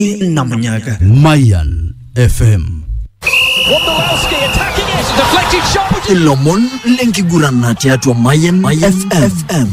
na munyaga Mayan FM. Wondolowski attacking it. Deflected shot. ilomon lenkigurana tiatua Mayan, Mayan FM.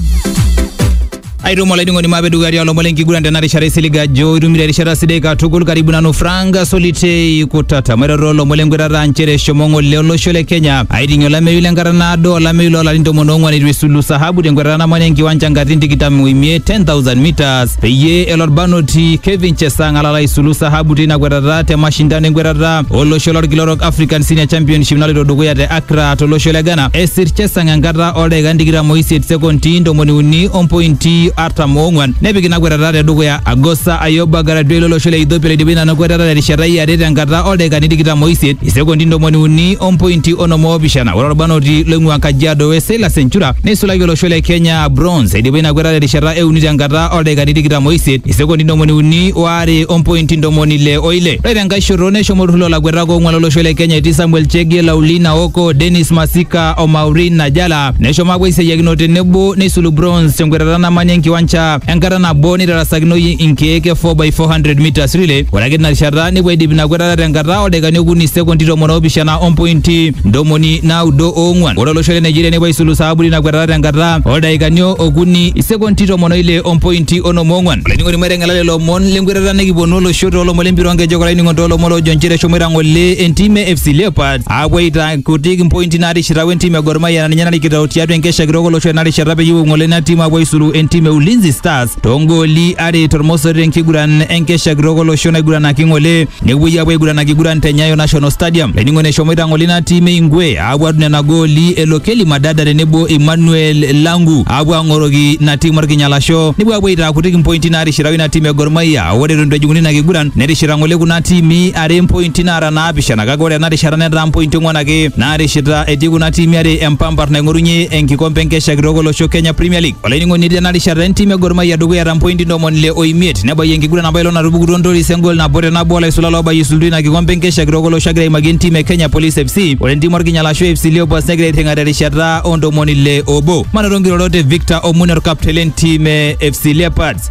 aitomo laiding'oni maape dukaria olomon lenkiguran tena rishata isiliga ajo itumito erishata sidai katukul karibu nanu frank solitei kutata mairoro olomon lenkwetata nchere eshomo ng'ole olosho le kenya aiting'ie olameyu lenkata naado olameyu loolarin tomon oong'uan eitu esulu sahabu tenkwetata namanya enkiwanja nkatitin tikitam oimiet 10000 meters peyie elo orbanoti Kevin Chesang alala aisulu sahabu teina kwetata te mashindano enkwetata olosho lorkila orok African Senior Championship naloito dukuya te Accra tolosho le Ghana. Esir Chesang enkata oldaikan tikitam oisiet sekondi ntomoni uni ompointi artam oong'wan nepik ina kwetata te dukuya. Agosa Ayoba Garadwei lolosho le Ethiopia loidipa ina kwetata terishata e are tenkata oldaikani tikitam oisiet isekondi ntomoni uni ompointi onom oopishana. Ore orbanoti loing'ua Kajiado West Silas Enchura neisulaki olosho le Kenya a bronze eidipa ina kwetata terishata e uni tenkata oldaikani tikitam oisiet isekondi ntomoni uni oare ompointi ntomoni ile oile ore tenkae shoto neshomo olturrur lolakuetak oong'uan lolosho le kenya etii samuel chege laulina oko denis masika o maureen najala neshomo apuo aisiayiakino tenebo neisulu bronze tenkwetata namanya enkiwanja enkata nabo neitarasakinoyu inkeek e 4x400 meters relay ore ake tinarishata nepuo aidip ina kwetata tenkata oldaikani okuni sekondi tomon oopishana ompointi ntomoni naudo oong'uan ore olosho le Nigeria nepuo aisulu saabu tina kwetata tenkata oldaikani okuni isekondi tomon oile ompointi onom ong'uan. Olainining'oni maiteng'ela lelo omon lenkwetata nikiponu olosho toolomon lempira oonkejek olainining'oni toolomon loojo nchere eshomoita ng'ole entim e FC Leopards aapuo aitaa kutik impointi naatishita wentim e Gor Mahia naa ninye narikito tiatua enkesha kitok olosho ena rishata peyie epuo ng'ole ina tim aapuo aisulu entim e Ulinzi Stars toongooli are tormosori tenkiguran enkesha kitok olosho naiguranaki ng'ole nepuoi apuo aiguran akiguran te Nyayo National Stadium. Laining'oni eshomoita ng'ole ina tim e Ingwe aapuo adung nena gooli e Lokeli Madada tenebo Emmanuel Langu aapuo ang'oroki ina tim orkinyalasho nepuo apuo aitaa kutik impointi naatishiraka ina tim e Gor Mahia. Ore eton eitu ejing'uni ina kiguran netishira ng'ole kuna tiimi are impointi naara naapishana kake ore ena rishata netaa mpointi ong'wan ake naatishita etii kuna tiimi are empampar naing'orunye enkikompe enkesha kitok olosho Kenya Premier League. Olainining'oni tena rishata entim e Gor Mahia dukuya ta mpointi ntomoni ile o imiet nebayie enkiguran apa ilo natupukutuo Ntoris engol nabo te nabo olaisula loobayie isultu ina kikompe enkesha kitok olosho agira aimaki entim e Kenya Police FC ore entim Orkinyala ashu FC Leopards negira airring'a terishata o ntomoni ile obo. Manoto nkirorot e Victor Omune orkaptei lentim e FC Leopards.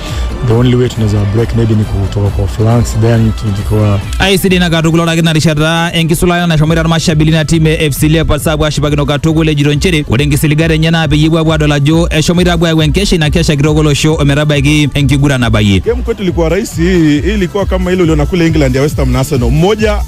the only way tunaweza break maybe ni kutoka kwa flanks then tukikuwa aisidi na katukul orakiti na rishata enkisulata nashomoita irmashabili na timu e FC Leopards apuo ashipakino katukul ejito nchere ore nkisiligat enye naa peyie epuo apuo adol ajo eshomoita apuo ayau enkesha ina kesha kitok olosho ometabaiki enkiguran nabayie Game kwetu ilikuwa rahisi, hii hii ilikuwa kama ile uliona kule England ya West Ham na Arsenal, mmoja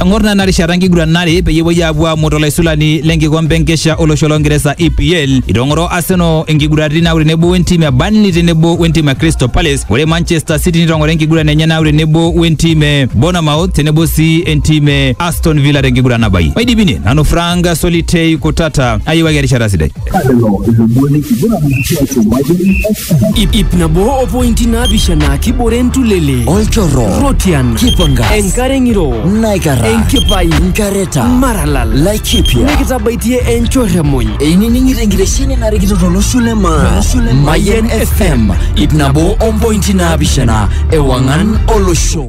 Eng'or nena rishata enkiguran are peyie epuoi aapuo aamut olaisulani lenkikombe enkesha olosho longeresa EPL. Itong'oro Arsenal inkiguraritin naaku tenebo wentim e Burnley tenebo wentim e Crystal Palace. Ore Manchester City nitong'ora enkiguran enye naaku tenebo wentim e Bournemouth tenebo sii entim e Aston Villa tenkiguran nabayie. Maidipine nanu Frank Solitei Kutata ayiewaki erishata sidai. Lelo ilomon lenkiguran tiatua Mayian FM. Ip, ip nabo o pointi naapishana kibore entulele olchorro rotian kipangas enkare ng'iro naikara enkipai nkareta maralal laikipia nikitabaitie enchorremony einining'ito enkitesheni narikito tolosho le maa Mayian FM ip nabo ompointi naapishana ewang'an olosho